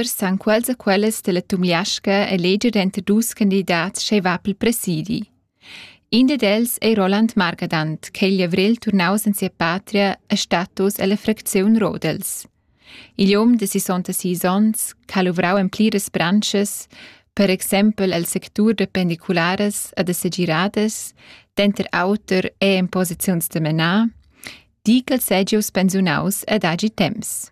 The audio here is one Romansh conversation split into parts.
san quels e quellas della Tumliasca eleger denter dus candidats sch'ei va pel presidi. In ded els ei Roland Margadant, che igl avrel turnaus en sia patria a status ella fracziun Rodels. Igl um de 66 onns ha luvrau en pliras branches, per exempel el sectur de pendiculares e de segiradas, denter auter e en posiziuns de menar, di ch'el segius pensiunaus ad agi temps.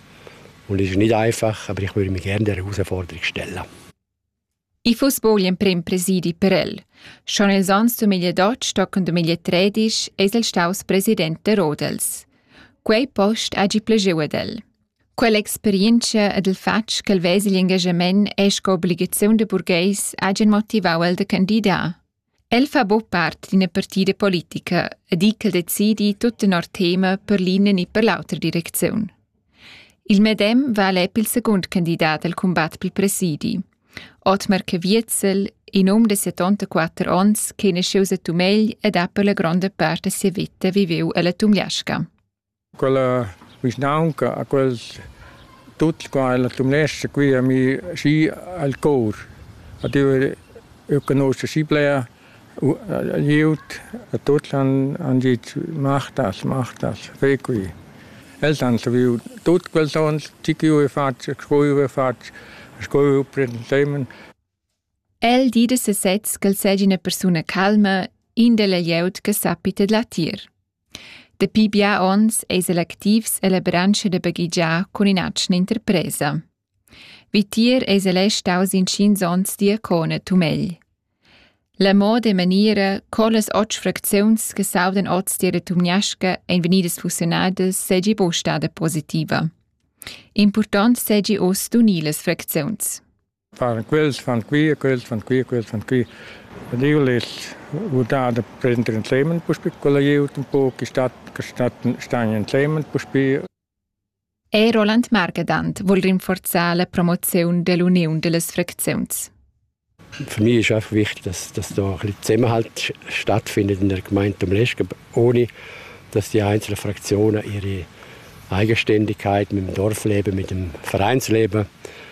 Und es ist nicht einfach, aber ich würde mich gerne dieser Herausforderung stellen. I fuss bo gl'emprem presidi per el. Schon els ans du miglia Dotsch toccon du miglia Tredisch es el staus president de Rodels. Quei post hagi plageu ad el. Quell'experienza ed il fatg che il vesel engagement e sco obbligazione de burgheis hagen motivau el de candidar. El fa buc part d'ina partida politica e di ch'el decidi tut tenor tema per l'ina ni per l'autra direcziun. Il medem val è il secund candidat al cumbat pel presidi. Otmar Caviezel, in um de 74 onns che nasceu a Tumegl ed ha per la gronda part da sia vita viveu ella Tumliasca. Quella vischnaunca ha quels tuts qua ella Tumlescha qui a mi schi al cor, ad ir eu canuscha schi bler glieud, a tuts han han dit mach das, mach das, ve qui. Els han saviu tut quels ons, chi chi ho fatg, sco chi ho fatg, sco chi ho presentemen. El di da sesez ch'el seigi ina persuna calma, in della glieud che sappi tedlar tier. Dapi bia onns eis el activs ella branscha da baghegiar cun in'atgna interpresa. Vitier eis el è staus intgins onns diacona tumegl. La moda e maniera co las otg fracziuns che saudan oz tier Tumniasca ein vegnidas fusionadas seigi buc stada positiva. Impurtont seigi uss d'unir las fracziuns. Fan quels, fan qui, quels fan qui, quels fan qui. Ed io less udar da prender ensemen puspe con la glieud un po che stat, che stat, stan ensemen puspe. Ei Roland Margedant vuol rinforzar la promoziun dell'uniun dellas fracziuns. Für mich ist einfach wichtig, dass, dass da ein bisschen Zusammenhalt stattfindet in der Gemeinde am Leschken, ohne dass die einzelnen Fraktionen ihre Eigenständigkeit mit dem Dorfleben, mit dem Vereinsleben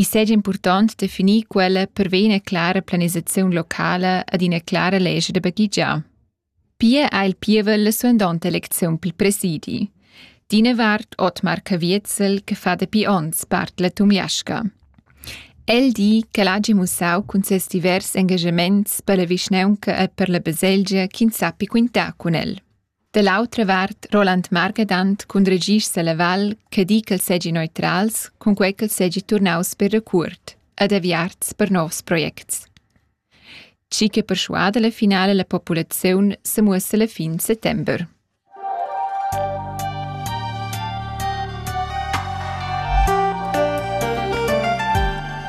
I seigi impurtont definir quella pervei ina clara planisaziun locala ed ina clara lescha da baghegiar. Pia ha il pievel la suandonta elecziun pil presidi. D'ina vart Otmar Caviezel che fa dapi onns part la Tumliasca. El di ch'el hagi mussau cun ses divers engagaments per la vischnaunca e per la baselgia ch'ins sappi quintar cun el. Da l'autra vart Roland Margedant cun regir Seleval che di ch'els seigi neutrals cun quei ch'els seigi turnaus per recuort ed aviarts per novs projects. Chi che perschuada la finala la populaziun se muossa la fin settember.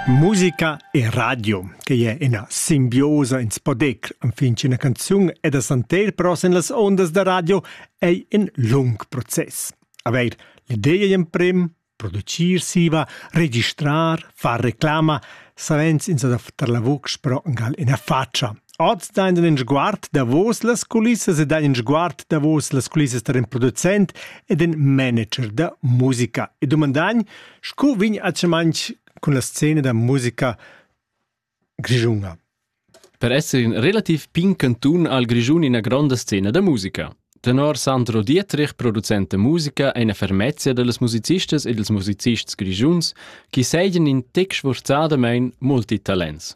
Musica e radio Quei è ina simbiosa in spodec enfin ch'ina canzun è da santer però sin las ondas da radio ei in lung process. Aveir l'ideia emprem, producir siva, registrar, far reclama, savens ins adaftar la vucz però gal ina faccia. Oz dain in sguard davos las culissas e dain in sguard davos las culissas da in producent e den manager da musica. E domandagn, scu vegn a manch cun la scena da musica grischuna. Per esser in relativ pin cantun al Grischun ina gronda scena da musica. Tenor Sandro Dietrich, producent da musica, è una fermezia dals musicistas e dels musicists grischuns che seigien in tec sforzadamain multitalents.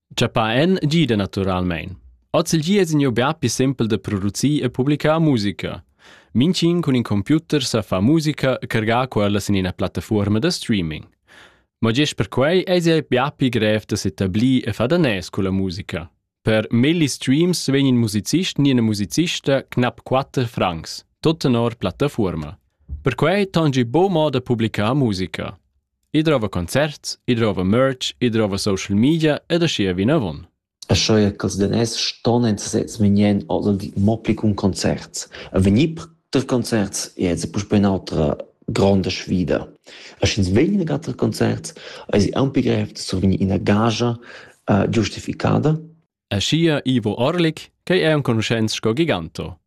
Chapà en gida naturalmein. Oz il gi es gneu bia pli sempel da producir e publicar musica. Mincin cun in computer sa fa musica e cargar quellas in ina plattafuorma da streaming. Ma gest per quei eis ei bia pli grev da s'etablir e far danès culla musica. Per melli streams vegn in musicist ni ina musicista knapp 4 francs, tot tenor plattafuorma. Per quei tangi bo moda da publicar musica. I drova concerts, i drova merch, i drova social media ed aschia vinavon. Sco er ch'els daners ston en sesez vegnir mo pli cun concerts. A vegnir per concerts è ez puspei un'altra gronda sfida. A sch'ins vegn a ter concerts, eis ei aunc pli grev da survegnir ina gagia uh, giustificada Aschia Ivo Orlik, ch'ei ei enconuschents sco Giganto.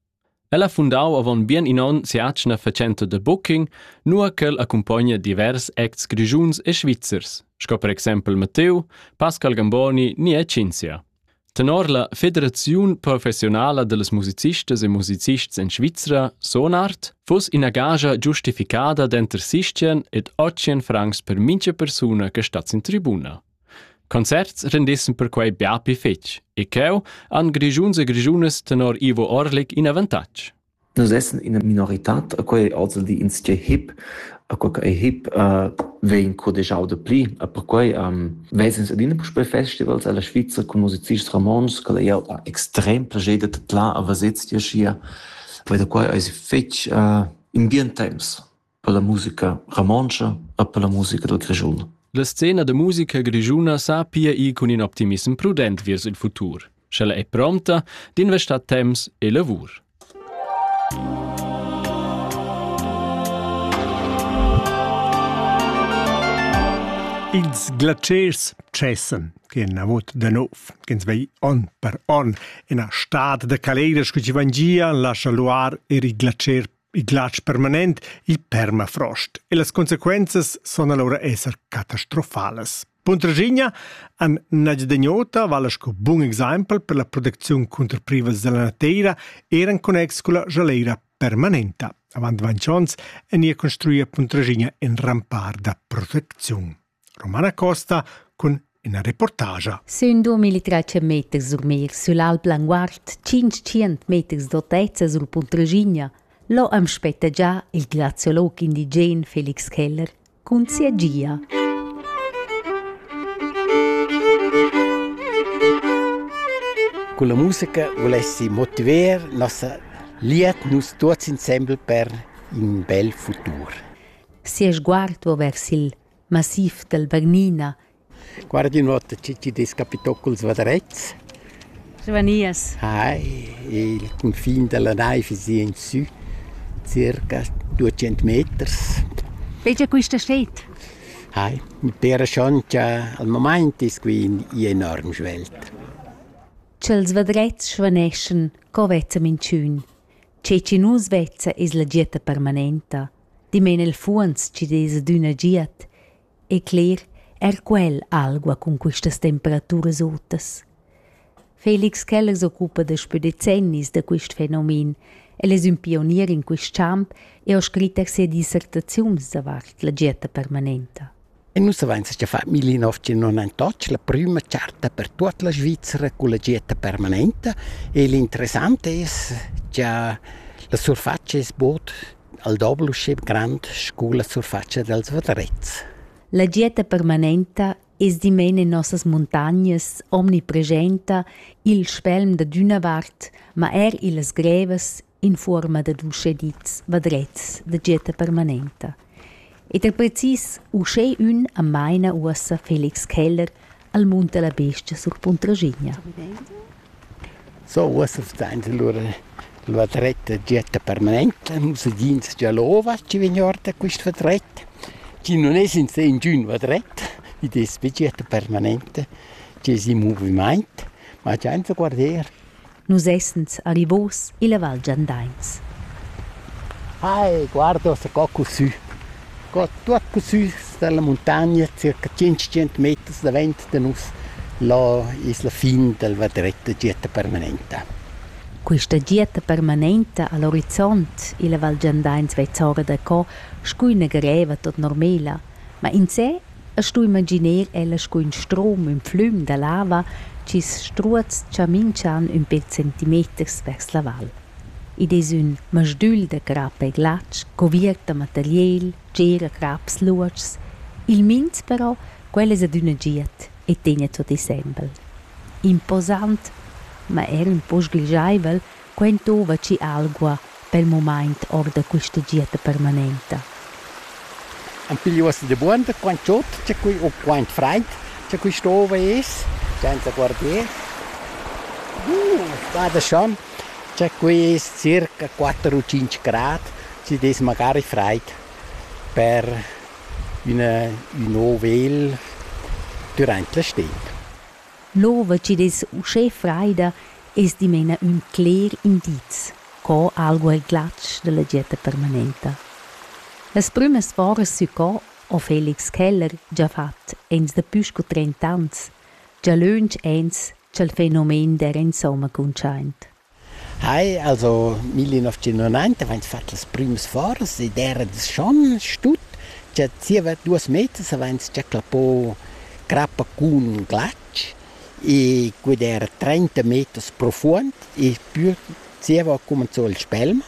El ha fundau avon bien in onn si'atgna fatschenta da booking, nua ch'el accumpogna divers acts grischuns e svizzers, sco per exempel Matteo, Pascal Gamboni ni e Cinzia. Tenor la Federaziun professionala dallas musicistas e musicists en Svizra, Sonart, fuss ina gagia giustificada d'enter sistien ed otschien francs per mincha persuna che stat sin tribuna. Concerts rendissen perquei bia pli fetg e cheu han grischuns e grischunas tenor Ivo Orlik in avantatg. Nus essen ina minoritad, quei ozildi insche hip, quei ei hip uh, vegn codegiau de pli. E perquei um, vesens adina puspei festivals alla Svizra cun musicists romans, che ei ha extrem plascher de tla a vesets dir schier. Poi da quei eis fetg uh, in bien temps. per la musica romontscha e per la musica dal Grischun. La scena da musica grischuna sa pia ir cun in optimissem prudent viers il futur, sch'ella è prompta d'investar temps e lavur. Ils glaciers cessen che navot da nov, ch'ins vei on per on ina stad da caleder scu ci vangia lascia luar er il glacier il glatsch permanent, il permafrost e las consequenzas son allora esser catastrofalas. Puntraschigna han Najdegnota vala sco bun exempel per la protecziun contro privas della nateira er en connex con la jaleira permanenta. Avant ventg onns en ia construia Puntraschigna in rampar da protecziun. Romana Costa cun ina reportagia. Sün 2300 meters sur mer sül Alp Languard, 500 meters d'autezza sul Punt Regigna, lo am spetta già il graziolog indigen Felix Keller cun sia gia. Con la musica volessi motiver nossa liet nus tuots insembel per in bel futur. Sia sguard va vers il massiv dal Bagnina. Guardi nuota chi chi'd es capitò culs vadrets. Svanias. Hai, il cunfin da la naiv es i in sü, circa 200 meters. Vegia quista sted? Hai, mi pera schon cha al momaint es qui in enorm svelt. Ch'els vadrets svaneschan, co vezza minchün? Che chi nu svezza es la gita permanenta. Dimen il fuonz chi desa d'üna giat e cler eir quel algua cun quistas temperaturas otas. Felix Keller s'occupa daspö decennis da quist fenomen. El es ün pionier in quist champ e ho scrit er sia dissertaziuns davart la dieta permanenta. E nus avains gia fat millenovecentonantotg la prüma charta per tuot la Svizra culla gita permanenta e l'interessant es cha la surfatscha es bod al doble usché grand scu la surfatscha dals vadrets. La gita permanenta es dimena in nossas muntagnas omnipresenta i'l spelm dad üna vart, ma eir illas grevas in fuorma dad uschè dits vadrets da getta permanenta. Ed er precis uschè ün am maina uossa Felix Keller al mund della bestia sur Puntraschigna. So, uossa stainta lura il vadret da getta permanenta, nus agiins già l'ova chi vegn or da quist vadret, chi non es in se ingün vadret, id es be getta permanenta chi es in movimaint, ma giainta guarder Nus essens alivos illa Val Giandains. Ai, guarda sco cusü! Co tuot cusü dalla muntagna, circa tschintg meters davent da nus, là es la fin dal vadretta dieta permanenta. Quista dieta permanenta a l'orizont illa Val Giandains vezza ora da co scu üna greva tot normela, ma insè E stu imaginer el sco ün strom ün flüm da lava chi's struoz cha minch'an ün pêr centimeters vers la val. Id es ün masdügl da crap e glatsch cuviert da materiel, tgera craps luotschs. Il minz però, quel es adüna giat e tegna tuot insembel. Imposant, ma er ün po sgrischaivel Quei entova schi algua per il mumaint or da questa dieta permanenta. Am piglio as de buon da quant chod c'è qui o quant fraid c'è qui stova es senza guardier. Uh, vada schon. C'è qui es circa 4 o 5 grad, si des magari fraid per üna ün ovel durant la sted. L'ova chi'd es uschè fraida es dimena ün cler indiz co algu el glatsch da la dieta permanenta. Las prümas foras sü co ho Felix Keller già fat ens dapü scu trent'ans, già lönch ans cha'l fenomen d'eira insomma cuntschaint. Hai, also millenovecentonainta vains fat las prümas foras ed eira das-chon stut cha zieva duos meters avains già clappò crappa cun glatsch e quid eira trenta meters profuond e pü zieva ho cumanzò il spelm.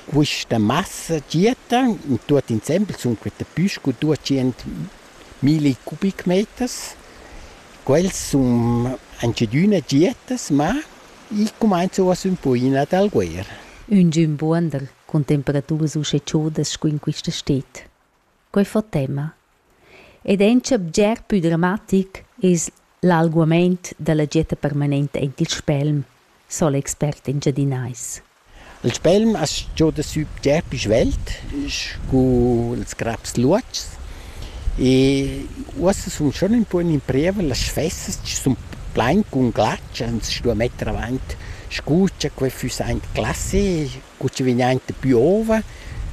Quista massa gietta, tuot insembel sun queta pü scu duatschient milli cubic-meters. Quels sun aunch'adüna gietas, ma i cumainza uoss ün poina dal guer. Üngün buondel cun temperaturas uschè chaudas scu in quista sted. Quai fa tema. Ed auncha bger pü dramatic es L'alguamaint da la getta permanenta aint il spelm, so l'expert engiadinais. Il spelm as gioda sü bger pü svelt scu ils craps luotschs e uossa sun schon ün pô in imprieva las sfessas chi sun plain cun glatsch ans stua metter avant scu cha quai füss aint classe cu chi vegn aint da pü ova,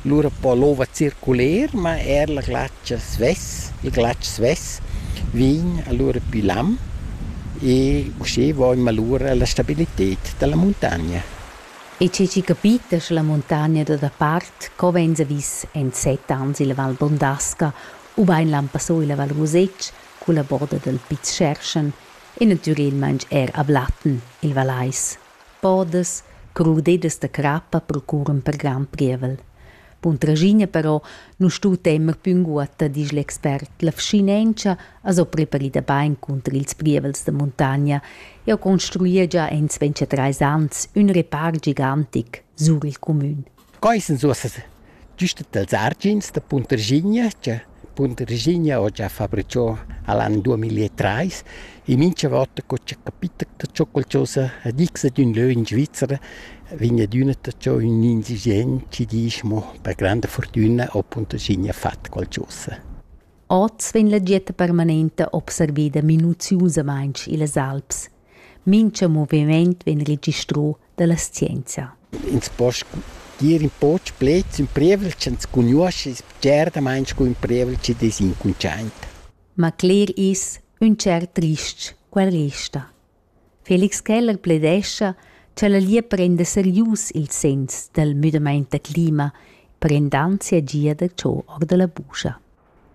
lura po l'ova circuler, ma eir la glatscha svess, il glatsch svess vegn alura pü lam e usché voimma lura la stabilited da la muntagna. E che chi capita scha la muntagna da dapart co vainsa vis in set ans illa Val Bondasca ubain l'han passò illa Val Rusetsch culla boda dal Piz Scherschen e natürelmaing eir a Blatten, il Vallais. Podas, crudeddas da crappa procuran per grand pievel. Bun tragina però nu stu temer pü ünguotta, disch l'expert. La vschinentscha as ho preparida bain cunter ils prievels da muntagna. Eu construia già in 23 ans ün repar gigantic sur il cumün. Quai sun uossa güst dals argins da Puntarschigna cha Puntarschigna ho già fabrichà a l'an duamillatrais. E mincha vota co cha capita da cho qualchosa a disch ad ün lö in Svizra, vegn adüna taxà ün indigent chi disch mo per granda furtüna ho Puntarschigna fat qualchosa. Oz vegn la dieta permanenta observeda minuziusamaing illas Alps. Mincha movimaint vegn registrà dalla scienzia. Ins po gir in poc pleds ün prievel ch'ans cugnuoscha es bgertamaing scu ün prievel chi dess incuntschaint. Ma cler es ün tschert trist quel resta. Felix Keller pledescha cha la Lia prenda serius ils segns dal müdamaint da clima per indanzia gia da cho or da la buscha.